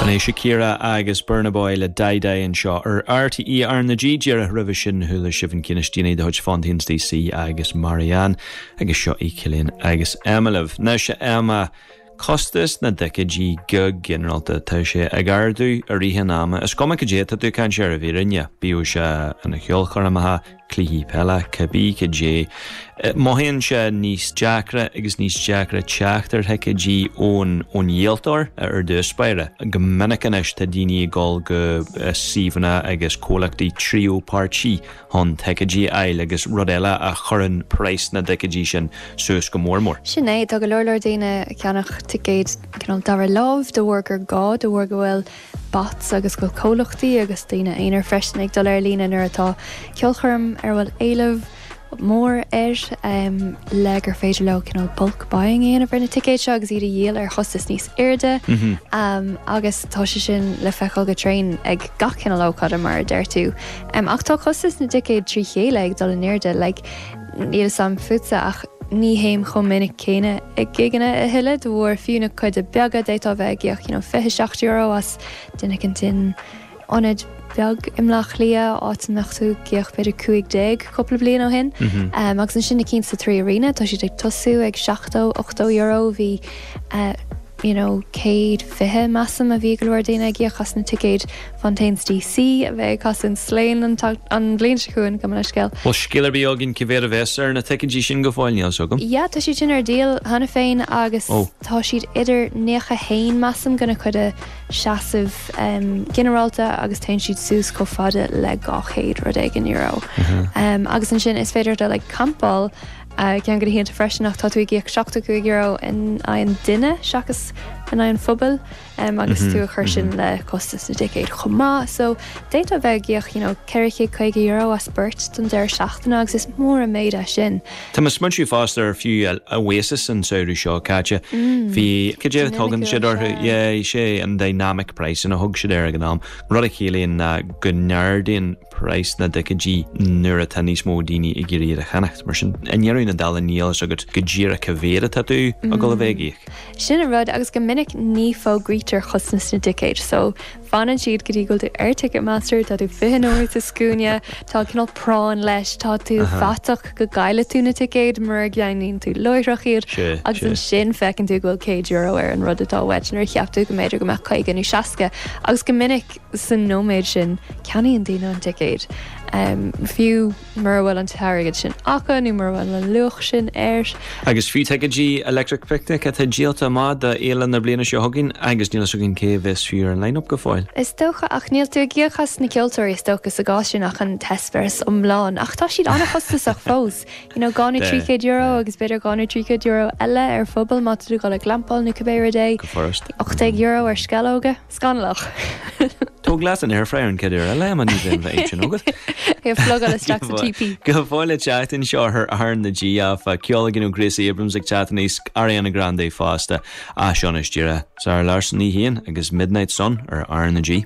B'in é Shakira agus Burna Boy le Dai Dai anseo ar RTÉ RnaG. Díreach roimhe sin chuala sibh an ceann is déanaí de chuid Fontaines DC agus Marianne agus seo í Cillian agus Emma libh. Anois a Emma, costas na dticéidí go ginearálta, tá sé ag ardú i rith an ama. Is cuma cad é atá tú ag caint air, i bhfírinne, bíodh sé ina cheolchoirmeacha, cluichí peile, cibé cad é, mothaíonn sé níos deacra agus níos deacra teacht ar thicéidí ón díoltóir ar dtús báire. Go minic anois tá daoine ag dul go suíomhanna agus comhlachtaí tríú páirtí chun ticéidí a fháil agus rud eile a chuireann praghas na dticéidí sin suas go mór mór. Sin é, tá go leor leor daoine ag ceannach ticéid cineál dara láimh de bharr gur gá, de bharr go bhfuil, bots agus go bhfuil comhlachtaí agus daoine aonair freisin ag dul ar líne nuair atá ceolchoirm ar a bhfuil éileamh mór air le gur féidir leo cineál bulk buying a dhéanamh ar na ticéid seo agus iad a dhíol ar chostas níos airde agus tá sé sin le feiceáil go tréan ag gach cineál ócáide mar a deir tú. Ach tá costas na dticéad trí chéile ag dul in airde. Níl a fhios agam fútsa, ach ní théim chomh minic céanna ag gigeanna a thuilleadh de bharr fiú na cuide beaga, d'fhéadfá bheith ag íoc you know fiche seacht euro as duine éicint in ionad beag i mBleá Cliath, áit a mbeadh tú ag íoc b'fhéidir cúig déag cúpla bliain ó shin. Am, agus ansin na cinn sa 3Arena, tá siad ag tosú ag seachtó, ochtó euro bhí eh, you know céad fiche measaim a bhí go leor daoine ag íoc as na ticéid Fontaines DC, a bheidh ag casadh in Slane an bhliain seo chugainn, cuma le scéal. Bhfuil scéal ar bith againn, cad é an praghas ar na ticéidí sin go fóill, níl fhios agam. Yeah, tá siad sin ar díol cheana féin agus tá siad idir naocha haon, measaim, do na cuide seasamh ginearálta agus téann siad suas chomh fada le dhá chéad rud éigin euro. Agus ansin is féidir dul ag campáil ceann de na hoícheanta freisin ach tá tú ag íoc seachtó cúig euro in aghaidh an duine seachas in aghaidh an phubaill. agus tú a chur sin le costas na dticéad chomh maith. So, d'fhéadfá bheith ag íoc, you know, €450 as beirt don deireadh seachtaine agus is mór an méid é sin. Tá mé ag smaointiú fosta ar fiú Oasis an samhradh seo caite. Bhí, cad é a dtugann siad orthu? Yeah, is é an dynamic pricing a thug siad air ag an am. Rud a chiallaíonn ná go n-ardaíonn praghas na dticéidí nuair atá níos mó daoine ag iarraidh iad a cheannacht. Mar sin, i ndeireadh na dála níl a fhios agat go díreach cá mhéad atá tú ag dul a bheith ag íoc. Sin an rud, agus go minic ní fógraítear chostas na dticéad, so fanann siad go dtí go bhfuil tú ar Ticketmaster, tá tú fiche nóiméad sa scuaine, tá cineál práinn leis, tá tú faiteach go gcaillfidh tú na ticéid mura gceannaíonn tú láithreach iad, agus ansin feiceann tú go bhfuil céad euro ar an rud atá uait nuair a cheap tú go mb'fhéidir go mbeadh caoga nó seasca, agus go minic. Sa nóiméad sin, ceannaíonn daoine an ticéad, fiú mura bhfuil an t-airgead sin acu nó mura bhfuil an luach sin air. Agus fiú ticéidí Electric Picnic atá díolta amach do fhéile na bliana seo chugainn, agus níl fhios againn cé a bheas fiú ar an line-up go fóill. Is dócha, ach níl tú ag íoc as na ceoltóirí is dócha sa gcás sin ach an t-eispéireas iomlán. Ach tá siad an-chostasach fós. You know, dhá nó trí chéad euro agus b'fhéidir dhá nó trí chéad euro eile ar phuball má tá tú ag dul ag glampáil nó cibé rud é. Go furasta. €18 ar sceallóga. Scannalach. Tóg leat an airfryer an chéad uair eile, Emma, ní bheidh an fhadhb sin agat. É a phlugáil isteach sa teepee. Go fóill le teacht anseo ar RnaG, áfach, ceol ó Gracie Abrams ag teacht aníos, Ariana Grande fosta, ach seo anois díreach. Zara Larsson í féin agus Midnight Sun ar RnaG.